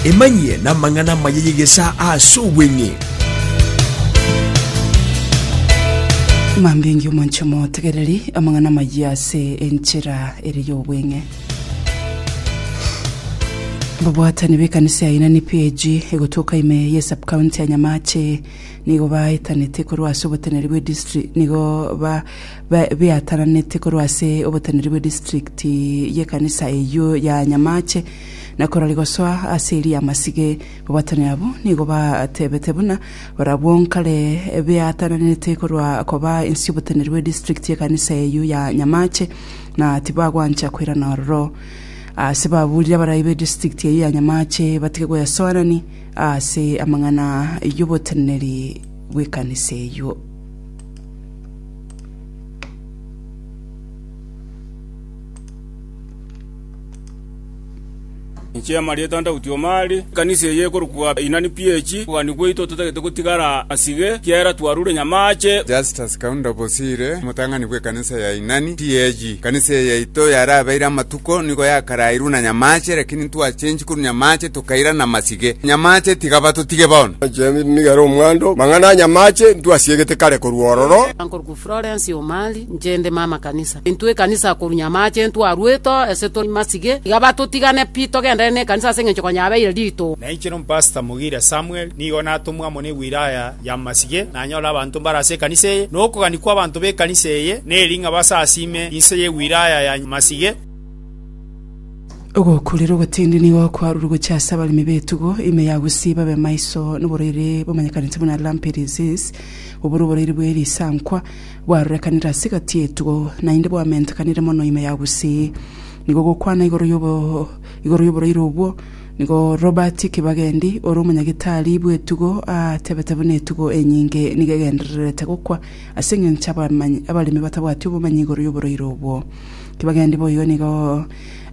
Emanyie namang'ana amaya y'egesaa aase obweng'e. Mambingi omonche motegereri amang'ana amayia ase enchera ere y'obweng'e. Babwatani b'ekanisa ya Inani PAG egotoka ime ye subcounty ya Nyamache nigo baetanete korwa ase oboteneri bwe district nigo ba biataranete korwa ase oboteneri bwe distrikti y'ekanisa eyio ya Nyamache, na korwa rigosoa ase erio y'amasige, babwatani abwo nigo batebete buna barabwo nkare biataranete korwa koba ensi y'oboteneri bwe distrikti y'ekanisa eyio ya Nyamache, na tibagwancha koirana ororo. Ase baburire abarai be distrikti eyio ya Nyamache batige gwesoerani ase amang'ana y'oboteneri bw'ekanisa eyio. Inche Marieta Daudi Omari, ekanisa eye ekorokwa Inani PH, okogania gwaito totagete gotigara asige, ekiagera twarure nyamaache. Justus Kaunda Bosire, omotang'ani bw'ekanisa ya Inani PH. Ekanisa eye yaito yarabeire amatuko nigo yakarairwe na nyamaache, lakini ntwachenchi korwa nyamaache tokaira namasige. Nyamaache tiga batotige bono. Ochendi nigo ere omwando, mang'ana a nyamaache ntwasiegete kare korwa ororo. Nkorokwa Florence Omari, inche nde mama kanisa. Intwe ekanisa korwa nyamaache ntwarwete oo ase tori masige, tiga batotigane pi togendere nekanisa ase engencho konya yabeire rituko. Nainche nompastor Mugiria Samuel nigo natomwa amo ne wilaya y'amasige, nanyore abanto mbare ase ekanisa eye, na okogania kw'abanto b'ekanisa eye, na ering'abo ase as'ime inse ye wilaya ya Masige. Ogokurera ogotindi nigo okwarure gochia ase abaremi b'etugo ime ya Gusii babe maiso noborwaire bomanyekanete buna lumpy disease, obore oborwaire bwe risankwa bwarorekanire ase egati y'etugo naende bwamentekanire mono ime ya Gusii. Nigo gokwana igoro igoro y'oborwaire obwo. Nigo Robert Kibagendi, ore omonyagitari bw'etugo, aatebete buna etugo enyinge nigo egendererete gokwa ase engencho abamanyi, abaremi batabwati obomanyi igoro y'oboroiro obwo. Kibagendi boigo nigo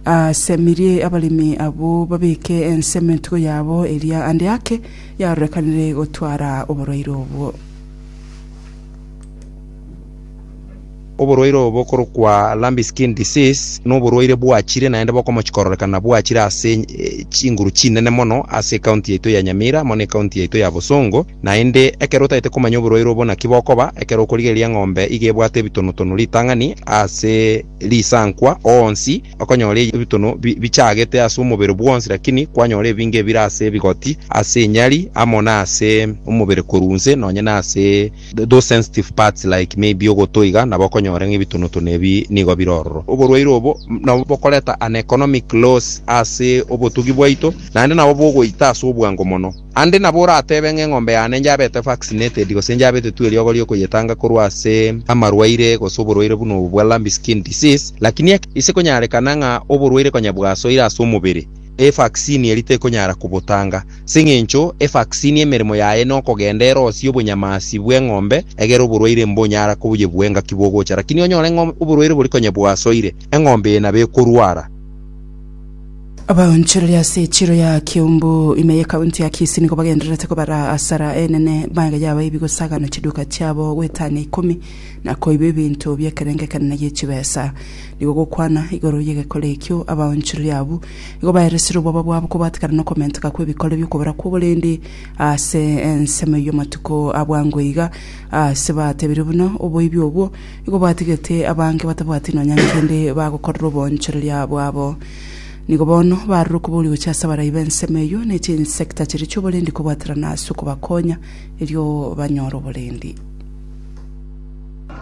aasemirie abaremi abwo babeke ensemo entugo yabo eria ande ake yarorekanire gotwara oboroiro obwo. Oborwaire obo bokorokwa lumpy skin disease noborwaire bwachire naende bokomochi kororekana bwachire ase chinguru chinene mono ase county yaito ya Nyamira amo ne county yaito ya Bosongo naende ekero otagete komanya oborwaire obo naki bokoba ekero okorigereria eng'ombe iga ebwate ebitono tono ritang'ani ase risankwa onsi okonyora ebitono bichagete ase omobere bwonsi lakini kwanyora ebinge ebire ase ebigoti ase enyari amo nase omobere korwa inse nonye nase. those sensitive parts like maybe ogoto iga, nabo okonyora ng'a ebitonotono ebi nigo bire ororo. Oborwaire obo nabo bokoreta an economic loss ase obotugi bwaito, naende nabo bogoita ase obwango mono. Ande nabo oratebe ng'a eng'ombe yane njabete vaccinated gose njabetetwe eriogo riokoyetanga korwa ase amarwaire gose oborwaire buna obo bwa lumpy skin disease, lakini ase konyarekana ng'a oborwaire konya bwasoire ase omobere, Evaksini eri tekonyara kobotanga, as'eng'encho evaksini emeremo yaye nokogenda erosie obonyamasi bw'eng'ombe, egere oborwaire mbonyara koyebua engaki bogocha. Lakini onyore ng'a oborwaire bori konya bwasoire, eng'ombe eye nabo ekorwara. Abaonchoreria ase echiro ya Kiambu, ime y'Ekaunti ya Kisii nigo bagendererete kobara asara enene magega yabo y'ebi gosagana chiduka chiabo goetania ikomi na koiba ebinto bi'ekerengo ekenene gi'echibesa. Nigo gokwana igoro y'egekore ekio abaonchoreria abwo nigo baeresire oboba bwabo kobatekana nokomenteka kw'ebikore bi'okobera kw'oborendi ase ensemo y'amatuko a bwango iga, aase batebirie buna oboibi obwo nigo bwatigete abange batabwati nonya nkende bagokorera oboonchoreria bwabo. Nigo bono barure okobori gochia ase abarai b'ensemo eyio ne chinsecta chiria chi'oborendi kobwaterana ase okobakonya erio banyore oborendi.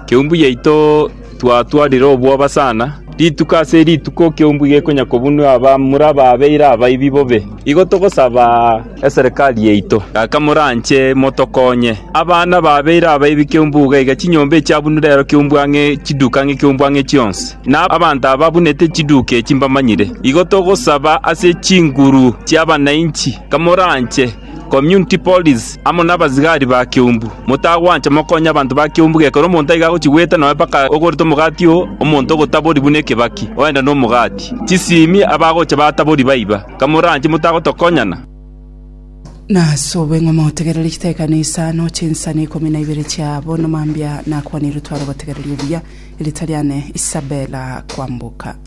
Keumbu yaito twatwarire obwoba sana, rituko ase rituko keumbu gekonya kobunua abamura baabeire abaibi bobe. Igo togosaba eserekari yaito, gaka moranche motokonye. Abana baabeire abaibi keumbu iga iga, chinyomba echiabunire ero keumbu ang'e, chiduka ang'e keumbu ang'e chionsi. Na abanto ababunete chiduka echi mbamanyire. Igo togosaba ase chinguru chi'abananchi, gaka moranche. Community Police, amo nabasigari ba keumbu. Motagwancha mokonye abanto ba keumbu gekero omonto aiga agochia goeta noe mpaka ogorete omogati oo, omonto ogotabori buna ekebaki, ogenda nomogati. Chisimi abagocha batabori baiba. Kamoranche motagotokonyana. Nasobe ng'a motegerere chitaikano isano chinsani ikomi na ibere chiabo, na mambia nakwanire otware obotegereri obuya, erita riane Isabella Kwamboka.